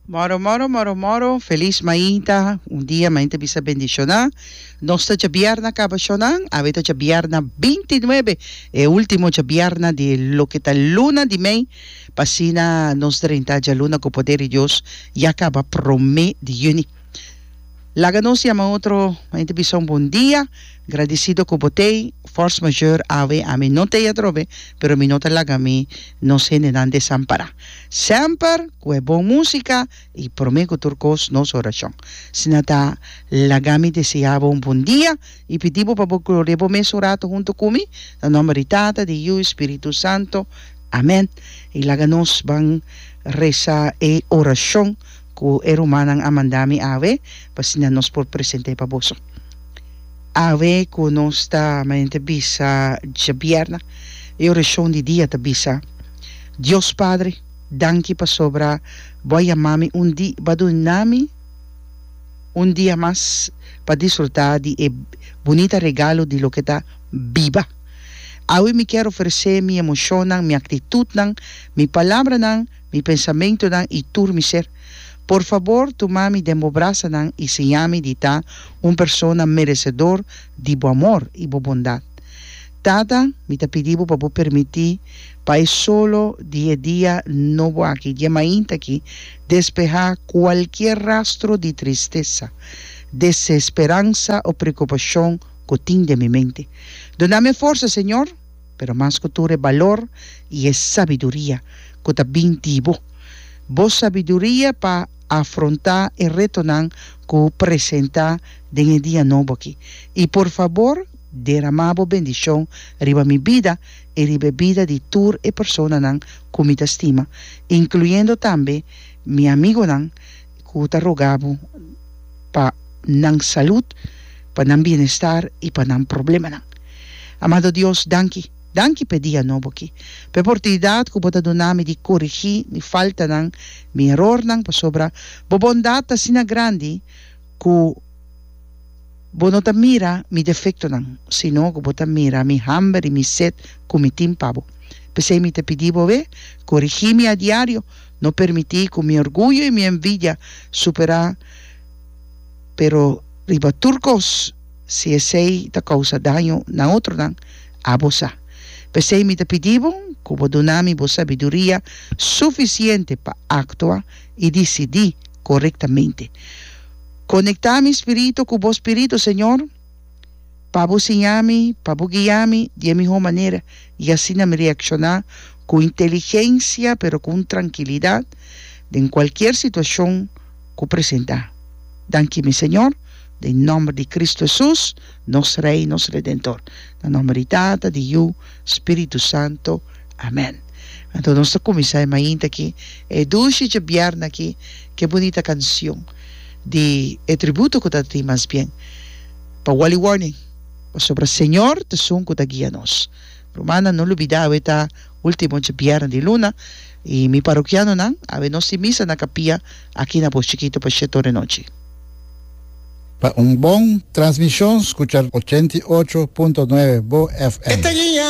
Moro moro moro moro feliz mainta un dia mainta bisa bendiciona nos ta chabiarna caba shonan awe ta chabiarna binti nuebe e ultimo chabiarna di loke ta luna di mei pa asina nos drenta djaluna cu poder di Dios ya caba prome di juni. Laga nos yama otro hende bisa un bon dia. Gradisido ku bo t'ei. Force majeure awe a mi no t'ei atrobe, pero mi no ta laga mi nos hendenan desampará. Semper ku e bon músika i promé ku tur kos nos orashon. Si nan ta laga mi deseá bo un bon dia i pidi bo pa bo glori'é bo mes un ratu huntu ku mi, na nòmber di Tata, di Yu i Spiritu Santu. Amèn. I laga nos ban resa e orashon. Ku e rumannan a manda mi awe, pa asina nos por present'é pa boso. Awe ku nos ta mañanita bisa djabièrna, e orashon di dia ta bisa, Dios Padre, danki pasobra Bo a yama mi un di, Bo a duna mi un dia mas pa disfrutá di e bunita regalo di loke ta biba. Awe mi kier oferes'é mi emoshonnan, mi aktitutnan, mi palabranan, Mi pensamentonan i tur mi ser. Por fabor tuma mi den bo brasanan i siñami di ta un persona meresedor di bo amor i bo bondat. Tata, mi ta pidi bo pa bo permití pa e solo di e dia nobo aki, dje mainta aki, despehá kualkier rastro di tristesa, desesperansa o preokupashon ku tin den mi mente. Duna mi e forsa, Señor! Pero mas ku tur e balor i e sabiduria ku ta bin di bo. Bo sabiduria pa afrontá e retonan ku presentá den e dia nobo aki. I por fabor, deramá bo bendishon riba mi bida i riba e bida di tur e personanan ku mi ta stima, inkluyendo tambe mi amigonan, Cu ta rogabo pa nan salud, pa nan bienestar y pa nan problemanan. Amado Dios, danki. Danki p'e dia nobo aki, p'e portunidad cu Bo ta duna mi di corigi mi faltanan, mi erornan, pasobra Bo bondad ta asina grandi cu Bo no ta mira mi defectonan, sino cu Bo ta mira mi hamber y mi sed cu mi tin pa Bo. P'esey mi ta pidi Bo, Corigi mi a diario, No permití ku mi orguyo i mi envidia superá, pero riba tur kos, si esei ta kousa daño na otronan, abo sa. P'esei mi ta pidí bo ku bo duna mi bo sabiduria sufisiente pa aktua i disidí korektamente. Konektá mi spiritu ku bo spiritu, señor. Pa bo siña mi, pa bo guia mi di e mihó manera, i asina mi reakshoná ku un inteligensia pero ku un trankilidat den kualkier situashon ku presentá. Danki mi Señor, den nòmber di Kristu Hesus, nos Rei, nos Redentor. Na nòmber di Tata, di Yu, Spiritu Santu. Amèn. Anto nos ta kuminsá e mainta aki, e dushi djabièrna aki, ke bunita kansion. di e tributo ku ta tin mas bien pa Wally Warning pasobra Señor ta sun ku ta guia nos. Rumannan no lubidá awe ta último dje bièrnè di luna i mi parokianonan awe nos tin misa na kapia aki na Bos Chikitu pa shet ora e nochi. Pa un bon transmishon skucha ochenta i ocho punto nuebe Bo FM.